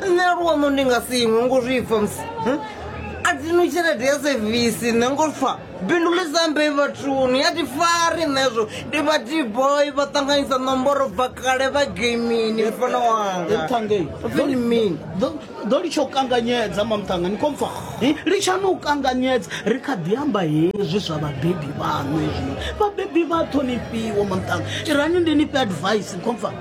nṋe luono ndi nga si iṅwe ngo zwi pfa musi hm? a dzi nwi tshelede ya sevisi nṋe ngo pfa bindu ḽi sambe vhathuni a ti fari nṋezwo ndi vha dboy vha ṱanganyisa nomboro bva kale vha gamini mufana wangaḓo litsha u kanganyedza mamthanga ni khompfa litshani u kanganyedza ri kha ḓi amba hezwi zwa vhabebi vhaṋu hezwino vhabebi vha ṱhonifhiwa mamthanga irani ndi ni fhe advice khompfa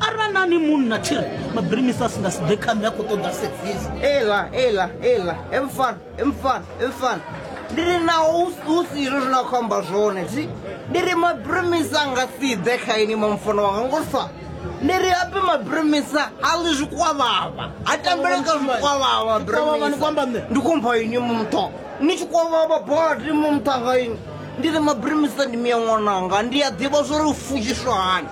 arali na ni munna tshi ri mabirimisa a si nga si ḓe kha nṋe a khou ṱoḓa sevisi ela ela ela emfan emfan emfan ndi ri naho hu si izwo zwine a khou amba zwone thi ndi ri mabirimisa a nga si ḓe kha ini mamfono wanga ngo sa ndi ri ape mabirimisa a ḽi zwikwavhava a tambele kha zwikwavhava mabirimisa ndi khou mpha ini mutho ni tshi kwavhava badi mumutha nga ini ndi ri mabirimisa ndi miya ṅwananga ndi a ḓivha zwo ri u futshiswa hani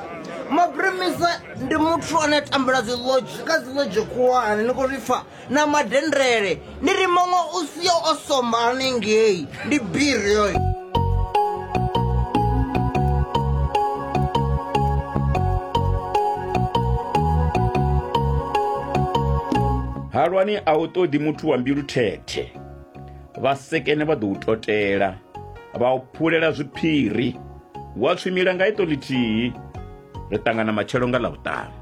maprimisa ndi muthu ane a tambula dzi lodge kha dzi lodge khulwane ni khou zwi pfa na madendele ndi ri muṅwe u sio o somba hanengei ndi biri yoyo halwani a u ṱoḓi muthu wa mbilu thethe vhasekene vha ḓo u totela vha u phulela zwiphiri Wa tswimila nga iṱo ḽithihi, ri ṱangana matshelo nga Ḽavhuṱanu.